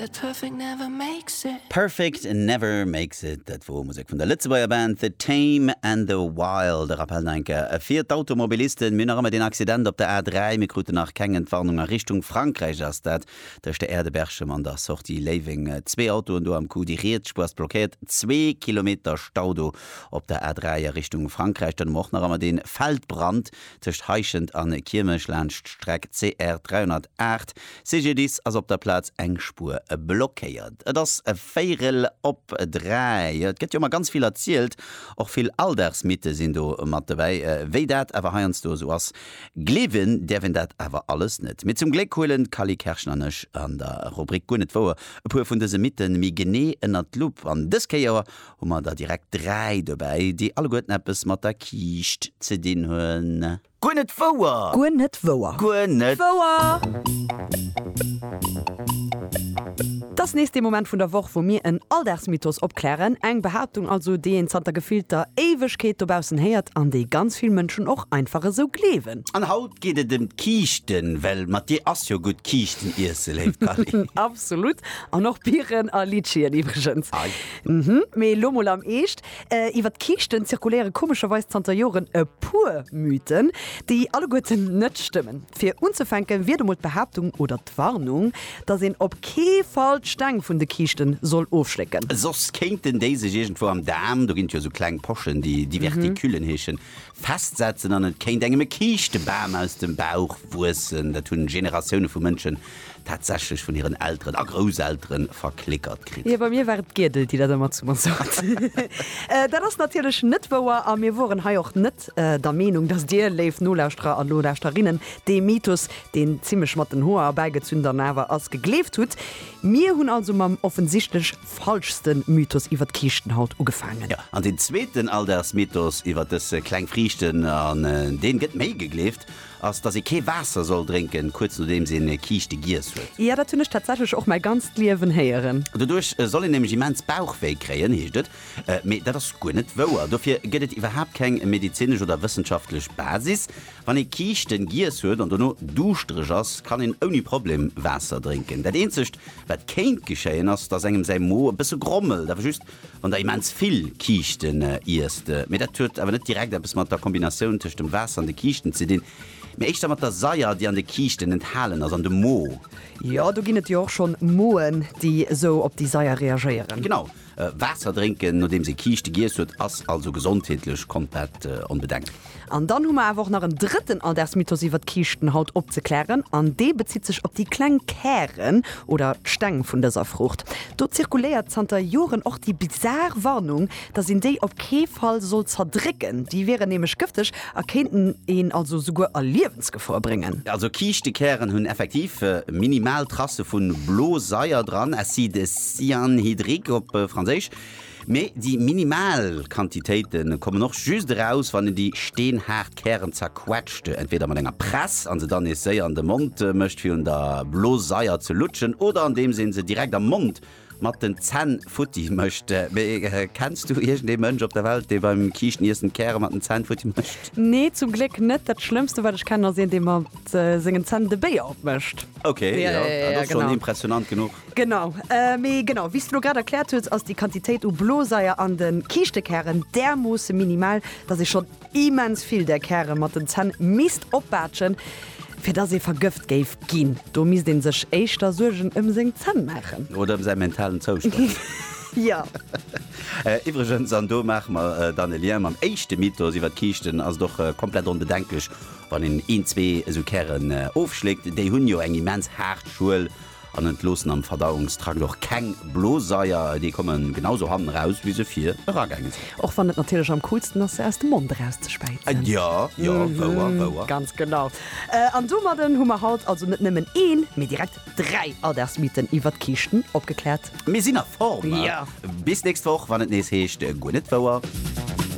But perfect never makes it. Perfect never makes it, dat wor Musek vun der Lëtzebuerger Band The Tame and the Wild. E Rappel no enker fir d'Automobilisten, Mir hunn nach ëmmer deen Accident op der A3, mir kruten nach keng Entwarnung a Richtung Frankräich ass dat tëscht der Aire de Berchem an der Sortie Léiweng zwee Autoen do am Coup, déi riets Spuer ass blockéiert, zwee Kilometer Stau do op der A3 a Richtung Frankräich. Dann hu mer och nach ëmmer dee Feldbrand tëscht Heischent an Kiirmech laanscht d'Streck CR 308, CGDIS, ass op der Plaz eng Spuer blockéiert. Et ass e Véirel op dräi. Et gëtt jo ëmmer ganz vill erzielt, och vill Alldagsmythe sinn do mat dobäi. Wéi dat awer heiansdo esou ass, gleewen däerf een dat awer alles net. Mee zum Gléck huelen d'Cally Kerschen an ech an der Rubrik Guer net wouer e puer vun dëse Mythen méi genee ënnert d'Lupp. An dës Kéier Hu mer der direkt dräi dobäi, déi alleguerten eppes mat der Kiischt ze dinn hunn. Guer net wouer! Guer net wouer! Guer net. Wouer! T'ass nees dee Moment vun der Woch, wou mir en Alldagsmythos opklären. Eng Behaaptung also, déi een zanter gefillter Éiwegkeet dobaussen héiert an déi ganz vill Mënschen och einfach esou gleewen. An haut geet et ëm d'Kiischten, well mat dir ass jo gutt Kiischten iesse, léift Dany. Absolut! An och Biren a Litschien iwwregens. Mhm, mee elo mol am Eescht, Iwwer d'Kiischten zirkuléiere komescherweis zanter Joren e puer Mythen, déi alleguerten net stëmmen. Fir unzefänke wier do mol d'Behaaptung oder d'Warnung, datt een op kee Fall d'Steng vun de Kiischte soll ofschlécken. Soss kéinten déi sech iergendwou am Daarm, do ginn et jo esou kleng Pochen, déi Diverticulen heeschen, festsetzen an et kéint engem e Kiischtebam aus dem Bauch wuessen. Dat hunn Generatioune vu Mënschen tatsächlech vun hiren Elteren a Grousselteren verklickert kritt. Jo, bei mir war et d'Giedel, déi dat ëmmer zu mer sot. Dat ass natierlech net wouer a mir woren hei och net der Meenung, dass Dir, léif Nolauschterer a Nolauschterinnen, dee Mythos, deen zimlech mat den Hoer erbäigezünn dann awer ass, gegleeft hutt. Mir hunn also mam offensichtlech. falschste Mythos iwwer d'Kiischtenhaut ugefaangen. An den zweeten Alldagsmythos iwwer dës kleng Friichten, an dee gëtt méi gegleeft, ass, dass ee kee Waasser soll drénken, kuerz nodeems een Kiischte giess huet. Jo, dat hunn ech tatsächlech och mäi ganzt Liewen héieren. Doduerch soll een nämlech immens Bauchwéi kréien, heescht et. Mee dat ass guer net wouer. Dofir gëtt et iwwerhaapt keng medezinesch oder wëssenschaftlech Basis. Wann ee Kiischten giess huet an dono duuschtereg ass, kann een ouni Problem Waasser drénken. Dat eenzegt, Wat kéint geschéien ass, dass engem säi Mo e bësse grommelt, awer just wann der immens vill Kiischten iesst. Mee dat huet awer net direkt eppes mat der Kombinatioun tëscht dem Waasser an de Kiischten ze dinn, mee éischter mat der Saier, déi an de Kiischten enthalen ass an dem Mo. Jo, do ginn et jo och schonn Moen, déi esou op déi Saier reagéieren. Genau. Waasser drénken nodeems ee Kiischte giess huet ass also gesondheetlech komplett onbedengt. An dann hu mer awer och nach en drëtten Alldagsmythos iwwert Kiischten haut opzeklären an dee bezitt sech op déi kleng Kären oder Steng vun dëser Fruucht. Do zirkuléiert zanter Joren och déi bizar Warnung, dass een déi op kee Fall soll zerdrécken, déi wieren nämlech gëfteg. A kéinten een also souguer a Liewensgefor bréngen. Also Kiischtekären hunn effektiv minimal Trasse vu Blosaier dran, acide cyanhydrique op Franséisch, mee déi minimal Quantitéite kommen och just eraus, wann een déi steenhaart Kären zerquetscht, entweeder mat enger Press an se dann nees séier an de Mond mécht fir un der Blosaier ze lutschen, oder andeems een se direkt am Mond mat den Zänn futti mécht. Mee kenns du iergend ee Mënsch op der Welt, dee beim Kiischteniissen d'Käre mat den Zänn futti mécht? Nee, zum Gléck net. Dat schlëmmste wat ech kennen ass een dee mat sengen Zänn de Béier opmécht. Ok, jo, dat ass schonn impressionant genuch. Genau. Mee genau wéi s de lo grad erkläert hues, ass déi Quantitéit u Bloseier an de Kiischte-Kären därmoosse minimal, datt ee schonn Immens vill där Käre mat den Zänn misst opbaatschen, fir dass ee vergëft géif ginn. Do misst ee sech éischter Suergen ëm seng Zänn maachen. Oder ëm säi mentalen Zoustand. Jo. Iwwregens, an do maache mer dann e Lien mam éischte Mythos iwwer d'Kiischten, ass et och komplett onbedenklech, wann een een, zwee esou Kären ofschléckt. Déi hunn jo eng immens haart Schuel, An entloossen am Verdauungstrakt och keng Bloseier, déi komme genau sou hannen eraus wéi se vir eragaange sinn. Och wann et natierlech am coolsten ass se aus dem Mond eraus ze späizen. Jo, jo, wouer, wouer. Ganz genau. An domadden hu mer haut also net nëmmen een, mee direkt dräi Alldagsmythen iwwert Kiischten opgekläert. Mir sinn a Form! Jo! Bis nächst Woch, wann et nees heescht Guer net wouer.